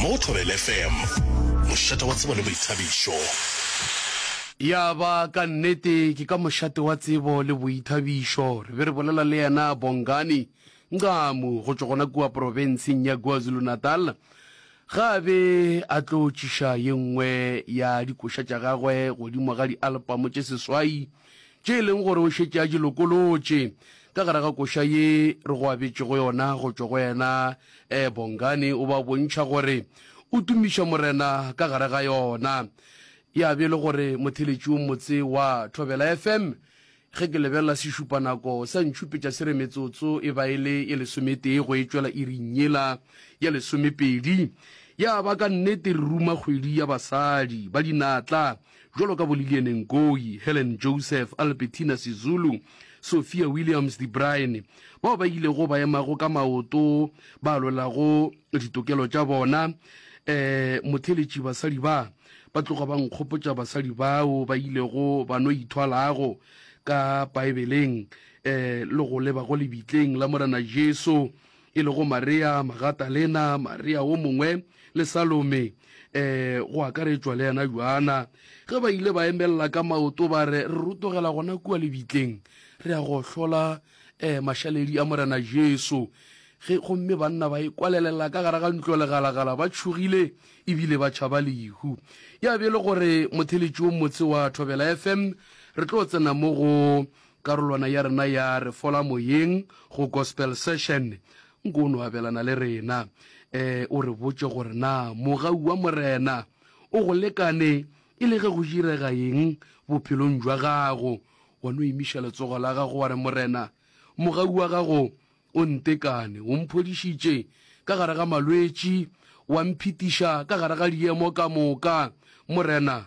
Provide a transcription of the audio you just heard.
Mo go Thobela FM, mošate wa tsebo le boithabišo. Ya ba, ka nnete, ke ka mošate wa tsebo le boithabišo re be re bolela le yena Bongani Nqamu go tšwa gona kua profenseng ya KwaZulu-Natal ge a be a tlo tšiša ye nngwe ya dikoša tša gagwe godimo ga dialpamo tše seswai tše e leng gore o šetše a di lokolotše ka gare ga koša ye re go abetšego yona go tšwa go yena. Um Bongani o ba bontšha gore o tumiša Morena ka gare ga yona. Ya be e le gore motheletši o motse wa Thobela FM, ge ke lebelela sešupanako sa ntšhupetša se re metsotso e ba e le ye lesometee go e tšwela iring yela ya lesomepedi. Ya ba ka nnete re ruma kgwedi ya basadi ba dinatla jwalo ka boLillian Ngoyi, Helen Joseph, Albertina Sizulu, Sophia Williams de Bruyn, bao ba ilego ba emago ka maoto ba lwelago ditokelo tša bona. Um motheletši, basadi ba ba tloga ba nkgopotša basadi bao ba ilego ba no ithwalago ka Paebeleng um le go leba go lebitleng la Morena Jesu e lego Maria Magatalena, Maria wo mongwe le Salome, e go akaretšwa le yena Joana, ge ba ile ba emelela ka maoto ba re, Re rutogela gona kua lebitleng, re ya go hlola e mašaledi a Morena Jesu. Ge gomme banna ba e kwalelela ka gare ga ntlo legalagala ba tšhogile ebile ba tšhaba lehu. Ya be e le gore motheletši wo motse wa Thobela FM re tlo tsena mo go Karolwana ya rena ya Re Fola Moyeng go Gospel Session, nko o no abelana le rena. E, o re botše gore na mogau wa Morena o go lekane e le ge go direga eng bophelong bja gago. Wa no emiša letsogo la gago wa re, Morena, mogau wa gago o ntekane. O mphodišitše ka gare ga malwetši, wa mphitiša ka gare ga diemo ka moka. Morena,